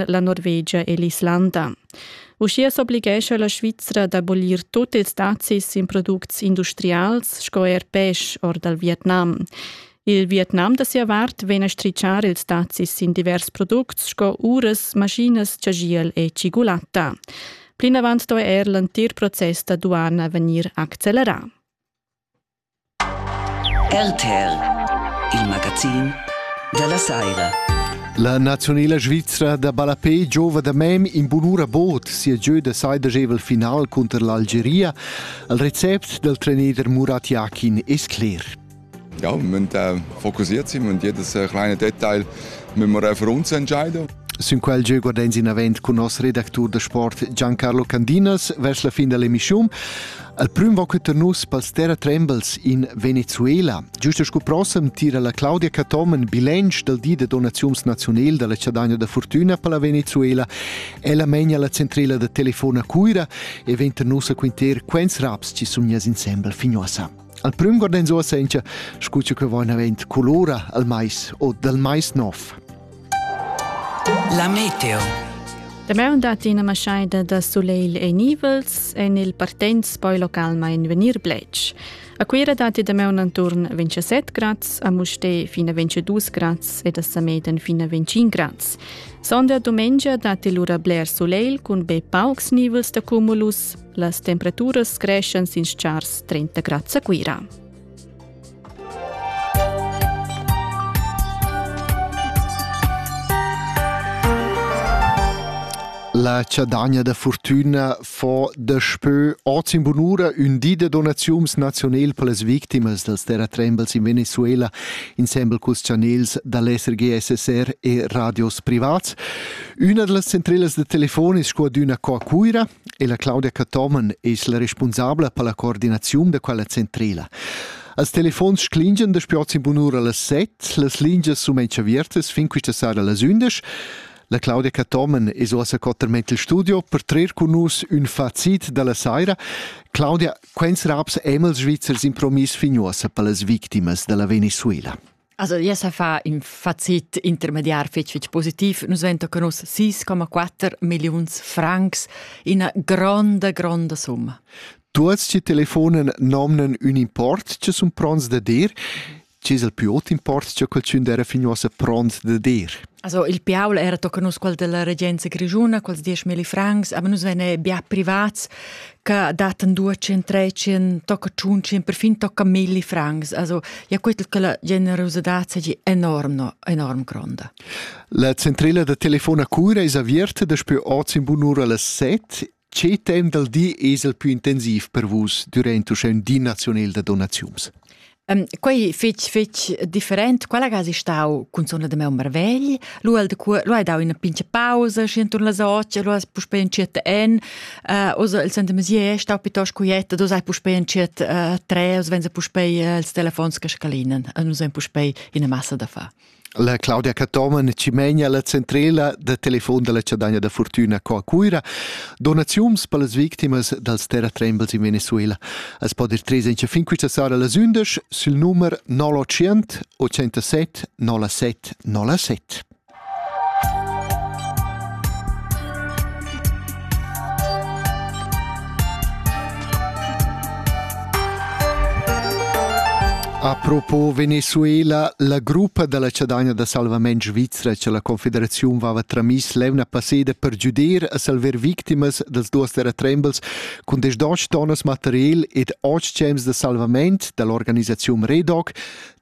la Norvegia e l'Islanda. Uschia s'oblighescha la Svizra d'abolir tut ils dazis in products industrials sco er pesch or dal Vietnam. Il Vietnam da sia vart vegn a stritschar ils dazis in divers products sco uras, maschinas, chagiel e cigulatta. Plinavant sto er l'entir process da duana vegnir accelerà. RTL, il magazin dalla saira. La nazionela svizra da ballapé giova da mem in bunura bod sia gieu da sai dagevol final cunter l'Algeria. Al recept dal trainer Murat Yakin es cler. Ja, wir müssen äh, fokussiert sein und jedes äh, kleine Detail müssen wir äh, für uns entscheiden. Sün quel gieu guardens in avant cun nos redactur da sport Giancarlo Candinas vers la fin dall'emissiun. Al prüm va queta nus pels terra trembles in Venezuela. Giusto scu prossem tira la Claudia Catomen bilanc dal di da donaziuns nazional dalla Ciadagna da Fortuna per la Venezuela. Ella mengia la centrela da telefona Cuira e venta nus a quinter quens raps ci sun jas insembel fignoasa. Al prüm guarden so a sentia, scu che vain avent colora al mais o dal mais nov. La meteo. Damaun datti ina maschaida da sulegl e nivels en il partenz poi localmain vegnir bletsch. A Cuira datti damaun enturn 27 grads, a Mustè fin a 22 grads ed a Sameden fin a 25 grads. Sonda dumengia datti lura bler sulegl cun be paucs nivels da cumulus. Las temperaturas creschan sin schars 30 grads a Cuira. La chadagna da fortüna fo daspö oz in bunura ün di da donaziums nazionel per las victimas dals terratrembels in Venezuela insembel culs chanels da l'SRG SSR e radios privats. Üna da las centrelas da telefon es scu adüna qua a Cuira e la Claudia Cathomen es la respunsabla per la coordinaziun da quella centrela. Als telefons sclingian da spiot sin bunura las set, las lingias sum avertas fin quista sera las 11. La Claudia Cathomen es ossa cotterment il studio per trer cun nus ün facit dalla saira. Claudia, quens raps emels svizzers impromis fin uossa per las victimas dalla Venezuela? Also, ja sa fa in facit intermediar fetg fetg positiv. Nus vento con us 6,4 milliuns francs, ina gronda, gronda summa. Tuots ci telefonen nomnen un import che sun pronts da dir. Ci es il più ot import che qualcun era fino a pront da dir? Also il Piaul era tocca nus qual della regenza grigiuna, quals 10.000 francs, aber nus vene bia privats che dat en due centrecien tocca ciuncien perfin tocca milli francs also ja quetl che la generosidad sei enorm no, enorm gronda La centrela da telefona cura es aviert daspö oz in bunura las 7 che temps dal di es el più intensiv per vus durant uschè di nazional da donaziuns Quei fetg fetg different. Quella ga si stau cunzona da meu marvegl. Lu el de cua, lu hai dau ina pincha pausa, schi enturn las otg, lu has puspei entschiet en. Uh, osa il sente mesier stau piuttosto quieta, du sai puspei entschiet uh, tre, os venza puspei uh, ils telefons che scalinen. Uh, nus ein puspei ina massa da fa. La Claudia Cathomen Cimegna, la centrela da telefon dalla Chadagna da Fortuna qua a Cuira. Donaziums per las victimas dals terratrembels in Venezuela. Es po dir tres encha fin quista sera las undisch sul numer 900 87 07 07. Apropos Venezuela, la gruppa dalla chadagna da salvament svizra che la Confederaziun vava tramiss levna passeda per giuder a salver victimas dels duas terratrembels cun des doc tonnas material ed otg gems da salvament dall'organisaziun Redoc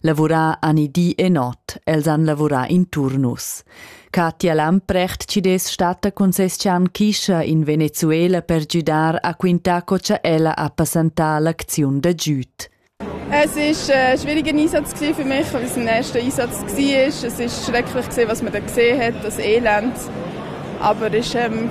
lavurar ani di e not, els han lavurà in turnus. Katja Lamprecht ci des stata concescian chischa in Venezuela per giudar a quintar co cha ella ha passantar l'acziun da giüt. Es ist ein äh, schwieriger Einsatz für mich, weil es mein erster Einsatz war. Es ist schrecklich, was man da gesehen hat, das Elend. Aber es ist ähm,